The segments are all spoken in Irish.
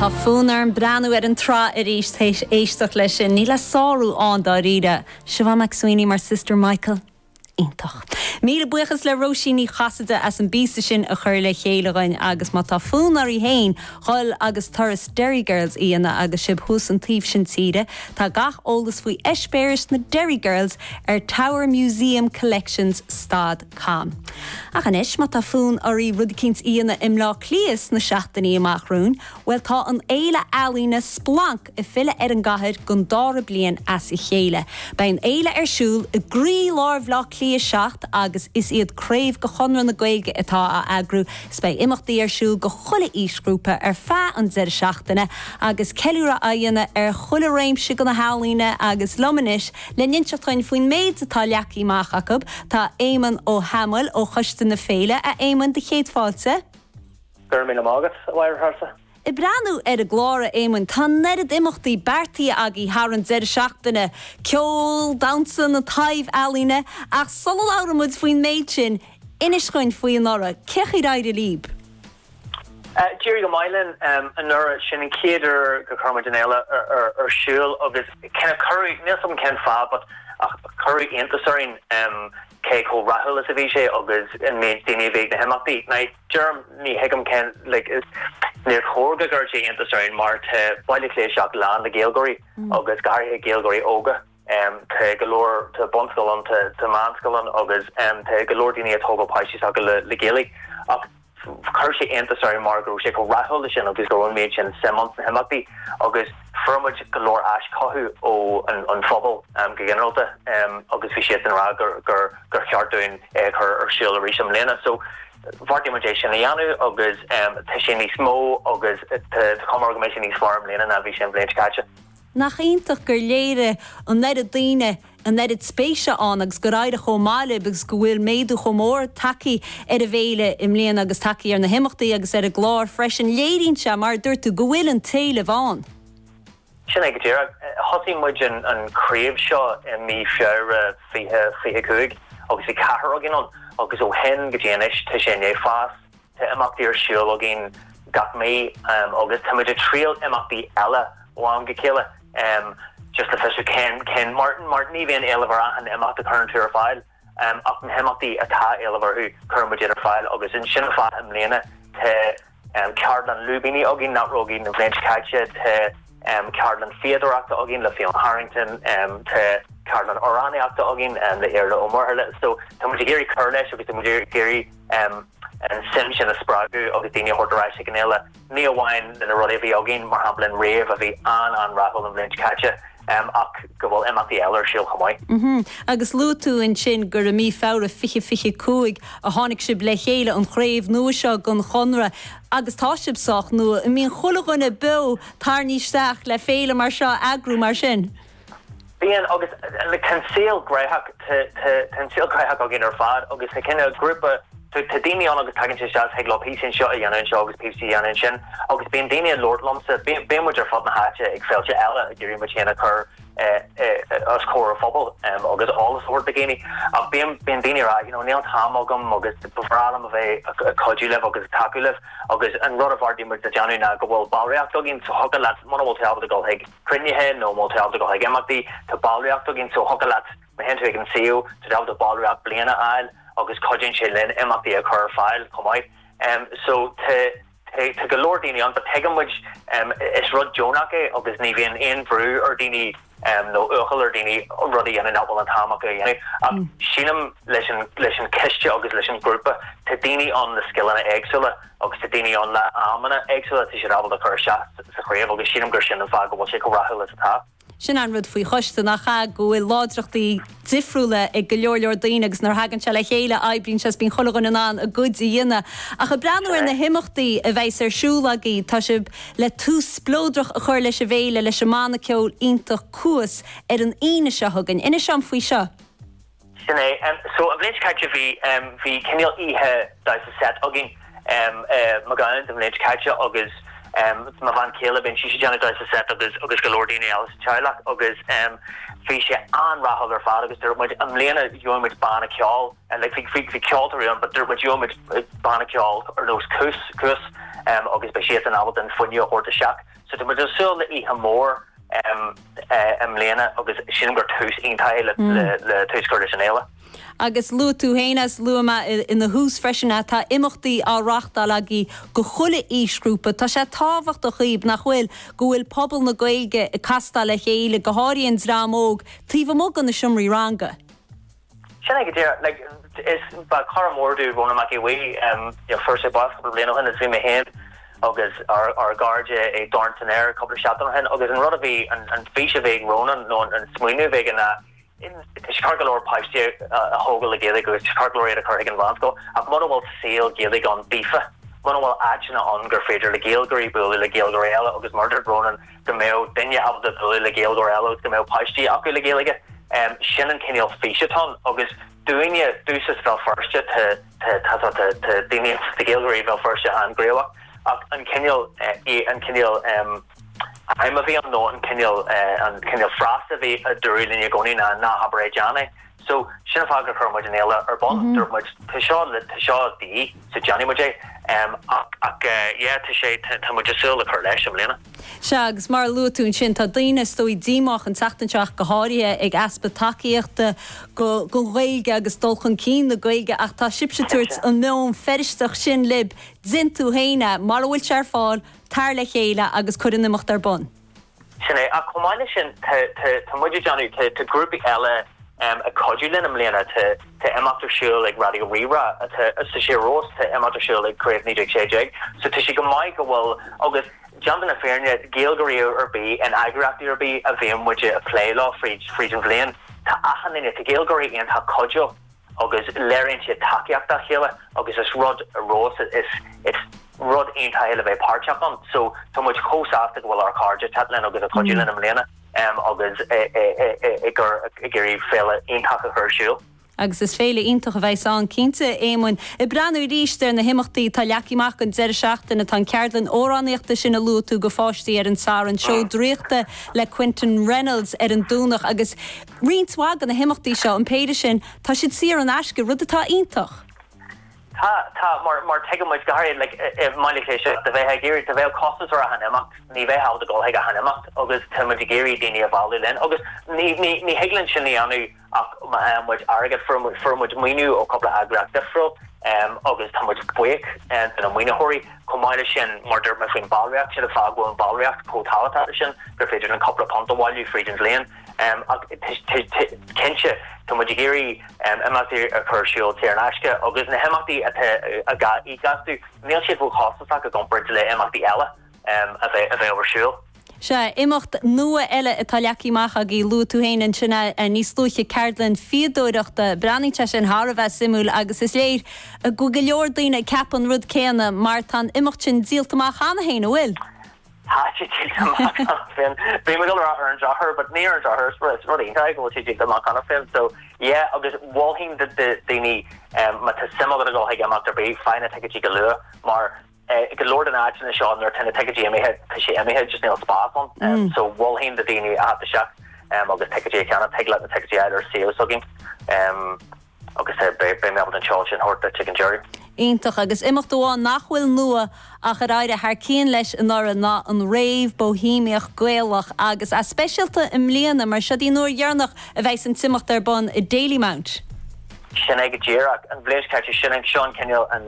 Tá fonn orm breathnú ar an tsraith arís théis éisteacht leis sin. Níl a sárú ann, dáiríre. Siobhán McSweeney mar Sister Michael? Iontach. Míle buíochas le Róisín Ní Chasaide as an bpíosa sin a chur le chéile dhuinn agus má tá fonn oraibh féin dhul agus turas Derry Girls a dhéanamh agus sibh thuas an taobh sin tíre, tá gach eolas faoi eispéiris na Derry Girls ar Tower Museum Collections Stad. Cam. Ach anois, má tá fonn oraibh rud eicínt a dhéanamh i mBleá Cliath sna seachtainí amach romhainn, bhuel, tá an fhéile ealaíne Splanc! ag filleadh ar an gcathair don dára bliain as a chéile. Beidh an fhéile ar siúl i gcroí-lár Bhleá Cliath 7 agus is iad craobh de Chonradh na Gaeilge atá á eagrú is beidh imeachtaí ar siúl go chuile aoisghrúpa ar feadh an deireadh seachtaine agus ceiliúradh á dhéanamh ar chuile réimse de na healaíona agus liom anois, Le n-inseacht dhuinn faoin méid atá leagthaí amach acab, tá Éamonn Ó hAdhmaill ó Choiste na Féile, A Éamonn, do chéad fáilte. Go raibh míle maith agat, a Mháire. Ag breathnú ar an gclár, a Éamonn, tá an oiread imeachtaí beartaithe agaí thar an deireadh seachtaine, ceol, damhsa, na taibh-ealaíona, ach sula labhróimid faoin méid sin, inis dhuinn faoi anuraidh, cé chaoi ar éirigh lib? D'éirigh go maith linn anuraidh, sin an chéad uair gur chuir muid an fhéile ar siúl agus cuireadh níl a fhios agam cén fáth but cuireadh iontas orainn cé chomh rathúil is a bhí sé agus an méid daoine a bhí ag na himeachtaí. Deirim ní thuigim cén, níor chóir go gcuirfeadh sé iontas orainn mar tá Baile Átha Cliath 7 lán le Gaeilgeoirí agus go háirithe Gaeilgeoirí óga. Tá go leor, tá bunscoil ann, tá meánscoil ann agus tá go leor daoine ag tógáil páistí s'acu le Gaeilge ach, chuir sé iontas orainn mar go raibh sé chomh rathúil sin agus go raibh an méid sin suim ann sna himeachtaí agus fuair muid go leor aischothú ó an phobal go ginearálta agus bhí siad ag rá gur cheart dúinn é a chur ar siúl arís i mbliana. So bheartaigh muid é sin a dhéanamh agus tá sé níos mó agus tá cuma air go mbeidh sé níos fearr i mbliana ná bhí sé an bhliain seo caite. Nach iontach gur léirigh an oiread daoine an oiread spéise ann agus gur éirigh chomh maith lib agus go bhfuil méadú chomh mór tagthaí ar an bhféile i mbliana agus tagthaí ar na himeachtaí agus ar an gclár freisin. Léiríonn sé, mar a dúirt tú, go bhfuil an t-éileamh ann. Sin é go díreach. Thosaigh muid an craobh seo i mí Feabhra 2025 agus bhí ceathrar againn ann agus ó shin go dtí anois tá sé i ndiaidh fás. Tá imeachtaí ar siúl againn gach mí agus tá muid ag triail imeachtaí eile ó am go chéile just le fiosrú cén cén mar mar ní bhíonn éileamh ar achan imeacht a chuireann tú ar fáil ach na himeachtaí atá éileamh orthu cuireann muid iad ar fáil agus ansin ar fad i mbliana tá ceardlann lúibíní againn nach raibh againn an bhliain seo caite tá ceardlann fíodóireachta againn le Fionn Harrington tá ceardlann amhránaíochta againn le hIarla Ó Muirthile so tá muid ag iarraidh cur leis agus tá muid ag iarraidh an suim sin a spreagadh agus daoine a thabhairt ar ais ag an fhéile, ní amháin de na rudaí a bhí againn, mar shampla an rave a bhí an-an-rathúil an bhliain seo caite, ach go bhfuil imeachtaí eile ar siúl chomh maith. Agus luaigh tú ansin gur i mí Feabhra 2025 a tháinig sibh le chéile, an chraobh nua seo den Chonradh, agus tá sibh sách nua. An mbíonn chuile dhuine beo tarraingthe isteach le féile mar seo a eagrú mar sin? Bíonn agus tá an saol gnoitheach, tá an saol gnoitheach againn ar fad agus tá cineál grúpa, tá daoine ann agus tagann siad isteach thig leo píosa anseo a dhéanamh anseo agus píosa a dhéanamh ansin agus bíonn daoine ag labhairt liomsa, bíonn muid ar fud na háite ag féilte eile ag iarraidh muid féin a chur os comhair an phobail agus eolas a thabhairt do dhaoine ach bíonn daoine ag rá you know níl an t-am agam agus ba bhreá liom a bheith ag cuidiú libh agus ag tacú libh agus an rud a bheartaigh muid a dhéanamh ná go bhfuil ballraíocht againn so thiocfadh leat muna bhfuil tú ábalta dul chuig cruinnithe nó má tá tú ag imeachtaí, tá ballraíocht againn so thiocfadh leat, má théann tú ag an suíomh, tá tú ábalta ballraíocht bliana a fháil agus cuidíonn sé linn imeachtaí a chur ar fáil chomh maith. So tá tá go leor daoine ann but tuigeann muid is rud deonach é agus ní bhíonn aon bhrú ar dhaoine nó iachall ar dhaoine rud a dhéanamh nach bhfuil an t-am acu a dhéanamh ach sílim leis an leis an choiste agus leis an ghrúpa tá daoine ann le scileanna éagsúla agus tá daoine ann le aidhmeanna éagsúla, tá siad ábalta cur isteach sa chraobh agus sílim gur sin an fáth go bhfuil sé chomh rathúil is atá. Sin an rud faoi choiste, nach ea, go bhfuil láidreachtaí difriúla ag go leor leor daoine agus nuair a thagann sé le chéile oibríonn sé agus bíonn chuile dhuine in ann a gcuid a dhéanamh. Sin é. Ach ag breathnú ar na himeachtaí a bheas ar siúl agaibh, tá sibh le tús spleodrach a chur leis an bhféile leis an mbanna ceoil iontach Cuas ar an Aoine seo chugainn. Inis dom faoi seo. Sin é. So, an bhliain seo caite, bhí, bhí cineál oíche damhsa seit againn i McCallan's an bhliain seo caite agus mo bhean chéile, bíonn sise ag déanamh damhsa seit agus, agus go leor daoine eile sa teaghlach agus bhí sé an-rathúil ar fad agus dúirt muid, i mbliana, gheobhaidh muid banna ceoil, like, bhí, bhí, bhí ceoltóirí ann but dúirt muid, gheobhaidh muid banna ceoil ar nós Cuas, Cuas agus beidh siadsan ábalta an fuinneamh a thabhairt isteach. Tá muid ag súil le oíche mhór i mbliana agus sílim gur tús iontach é le tús a chur leis an fhéile. Agus luaigh tú féin is luaigh mé ina thús freisin é, tá imeachtaí á reáchtáil agaibh do chuile aoisghrúpa. Tá sé tábhachtach dhaoibh, nach bhfuil, go bhfuil pobal na Gaeilge ag castáil le chéile, go háirithe an dream óg, taobh amuigh de na seomraí ranga. Sin é go díreach. Like, is, ba, cara mór domh Rónán Mac Aodha Bhuí. You know, fuair sé bás cúpla bliain ó shin is bhí mé féin agus ár, ár gcairde ag Dorn san Aer cúpla seachtain ó shin agus an rud a bhí, an, an fís a bhí ag Rónán nó an, an smaoineamh a bhí aige ná is ceart go leor páistí a, a, a thógáil le Gaeilge agus is ceart go leor iad a chur chuig an mheánscoil ach mura bhfuil saol Gaeilge ann daofa, muna bhfuil áiteanna ann gur féidir le Gaeilgeoirí bualadh le Gaeilgeoirí eile agus mar a dúirt Rónán, go mbeadh duine ábalta bualadh le Gaeilgeoir eile agus go mbeadh páistí acu le Gaeilge. Sin an cineál fís atá ann agus dúinne, Dúchas Bhéal Feirste, tá daoine, tá Gaeilgeoirí Bhéal Feirste an-ghníomhach ach an cineál, an cineál aidhm a bhí ann nó an cineál, an cineál frása a bhí, a dúradh linn i gcónaí ná, ná habair é, déan é. So, sin an fáth gur chuir muid an fhéile ar bun. Dúirt muid, tá seo le, tá seo de dhíth, so déanfaidh muid é. Ach, ach eh, yeah, tá sé, tá, tá muid ag súil le cur leis i mbliana. Sea, agus mar a luaigh tú ansin, tá daoine, is dóigh, díomách an tseachtain seo ach go háirithe ag easpa tacaíochta go, gon Ghaeilge agus dul chun cinn na Gaeilge ach tá sibhse ag tabhairt an meon Feirsteach sin libh, déan tú féin é, mura bhfuil sé ar fáil, tar le chéile agus cuir an imeacht ar bun. Sin é. Ach chomh maith leis sin, tá muid ag déanamh, tá grúpaí eile ag cuidiú linn i mbliana, tá imeacht ar siúl ag Raidió Rí-Rá, tá, sa Siar Rós, tá imeacht ar siúl ag Craobh 1916. So tá sé go maith go bhfuil, agus déanta na fírinne, Gaeilgeoirí ar bith in eagraíochtaí ar bith a bhíonn muid a' plé leo fríd an bhliain, tá achan duine, tá Gaeilgeoirí iontach cuidiúil. agus léiríonn siad tacaíocht dá chéile agus is rud rós is is rud iontach é le bheith páirteach ann so tá muid chomh sásta go bhfuil ár chairde ag teacht linn agus ag cuidiú linn i mbliana agus ag iarraidh féile iontach a chur ar siúl. Agus is féile iontach a bheas ann, cinnte, a Éamoin. Ag breathnú arís ar na himeachtaí atá leagtha amach don deireadh seachtaine, tá an cheardlann amhránaíochta sin a luaigh tú do pháistí ar an Satharn, seó draíochta le Quinton Reynolds ar an Domhnach agus, roinnt mhaith de na himeachtaí seo, an péire sin, tá siad saor in aisce, rud atá iontach. Tá, tá, mar, mar tuigeann muid, go háirid, like, i, i mbailiúcháin de bheith ag iarraidh, dá mbeadh costas ar achan imeacht, ní bheadh agat a dhul chuig achan imeacht agus tá muid ag iarraidh daoine a mhealladh linn agus ní, ní, ní thig linn sin a dhéanamh ach má fhaigheann muid airgead, fuair muid, fuair muid maoiniú ó chúpla eagraíocht difriúil ehm agus tá muid buíoch de na maoinitheoirí, chomh maith leis sin, mar dúirt mé faoin ballraíocht, sin an fáth go bhfuil an ballraíocht chomh tábhachtach sin gur féidir linn cúpla punt a bhailiú fríd an bhliain. Cinnte, tá muid ag iarraidh imeachtaí a chur ar siúl saor in aisce agus na himeachtaí atá á íoc astu, níl siad róchostasach i gcomparáid le himeachtaí eile a bheadh ar siúl. Sea, imeacht nua eile atá leagtha amach agaibh, luaigh tú féin ansin é níos luaithe, ceardlann fíodóireachta. Breathnaíonn sé sin thar a bheith suimiúil agus is léir go bhfuil go leor daoine ag ceapadh an rud céanna mar tá an imeacht sin díolta amach cheana féin, an bhfuil? Tá, díolta amach cheana féin. Bhí mé ag dul a rá ar an drochuair but ní ar an drochuair, is rud iontach go bhfuil sé díolta amach cheana féin so yeah agus mholfainn do dhaoine má tá suim agat a dhul chuig imeacht ar bith, faigh na ticéidí go luath mar go leor de na áiteanna seo nuair atá na ticéidí imithe tá sé imithe just níl spás ann so mholfainn do dhaoine a theacht isteach agus ticéidí a cheannach, tig leat na ticéidí a fháil ar suíomh s'againn. agus beidh mé ábalta an seoladh sin a thabhairt duit ag an deireadh. Iontach. Agus imeacht amháin nach bhfuil nua ach ar éirigh thar cionn leis anuraidh ná an rave Boihéimeach Gaelach agus é speisialta i mbliana mar seo í an uair dheireanach a bheas an t-imeacht ar bun i Dalymount. Sin é go díreach. An bhliain seo caite, sin é, seo an cineál an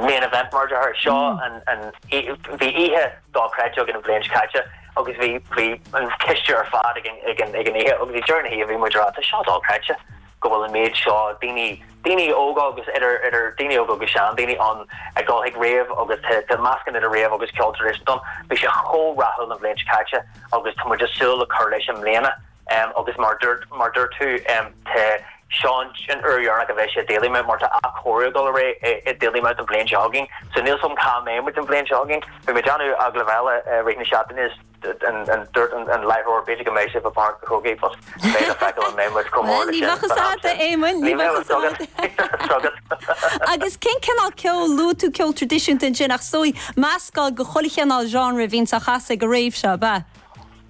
main event mar a deirtear. Seo an, bhí oíche dochreidte againn an bhliain seo caite. agus bhí bhí an coiste ar fad ag an ag an ag an oíche agus ag deireadh na hoíche bhí muid a rá tá seo dochreidte go bhfuil an méid seo daoine daoine óga agus idir idir daoine óga agus seandaoine ann ag dul chuig rave agus tá tá meascán idir rave agus ceol traidisiúnta, bhí sé chomh rathúil an bhliain seo caite agus tá muid ag súil le cur leis i mbliana. Agus mar dúirt, mar dúirt tú, tá seans sin an uair dheireanach a bheidh sé i Dalymount mar tá athchóiriú ag dul ar aghaidh i Dalymount an bhliain seo chugainn. So níl 's agam cá mbeidh muid an bhliain seo chugainn. Bhí mé ag déanamh agallamh eile i rith na seachtaine is dúirt an an láithreoir b'fhéidir go mbeidh sibh i bPáirc a' Chrócaigh but beidh le feiceáil an mbeidh muid chomh mór le sin. Ní bheadh a fhios agat a Éamoinn, ní bheadh a fhios agat. Agus cén cineál ceol, luaigh tú ceol traidisiúnta ansin ach is dóigh meascán de chuile chineál genre a bhíonn á chasadh ag a' rave seo, ab ea?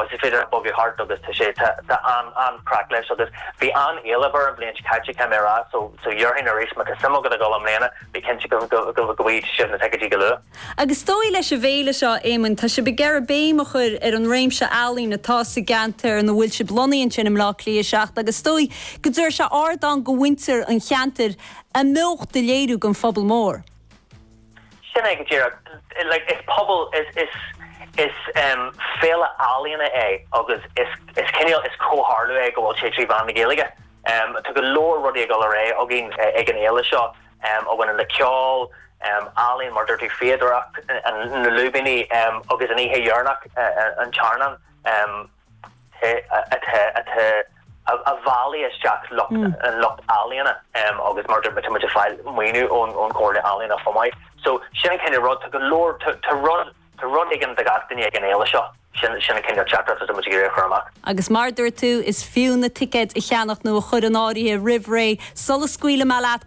Tá, is féidir leat bogadh thart agus tá sé, tá, tá an, an-chraic leis agus bhí an-éileamh air an bhliain seo caite caithfidh mé a rá so, so déarfainn arís má tá suim agat a dhul i mbliana bí cinnte go, go, go, go bhfaighidh sibh na ticéidí go luath. Agus is dóigh leis an bhféile seo, a Éamoinn, tá sibh ag iarraidh béim a chur ar an réimse ealaíon atá sa gceantar ina bhfuil sibh lonnaithe ansin i mBleá Cliath 7 agus is dóigh go dtabharfaidh sé ardán do mhuintir an cheantair a mbeocht a léiriú don phobal mór. Sin é go díreach. Like, is pobal, is, is, is em féile ealaíona é agus is, is cineál, is comhtharlú é go bhfuil sé trí mheán na Gaeilge. Em tá go leor rudaí ag dul ar aghaidh againn ag an fhéile seo em a bhaineann le ceol, em ealaíon mar a dúirt tú, fíodóireacht, na lúibíní em agus an oíche dheireanach, an t-airneán, em. a bhailigh isteach lucht an lucht ealaíona agus mar tá muid ag fáil maoiniú ón ón Chomhairle Ealaíona chomh maith. So sin an cineál rud, tá go leor, tá rud, tá rud éigin do gach duine ag an fhéile seo, sin sin an cineál teachtaireacht atá muid ag iarraidh a chur amach. Agus mar a dúirt tú, is fiú na ticéid a cheannacht nó a chur in áirithe roimh ré sula scaoilfidh mé leat!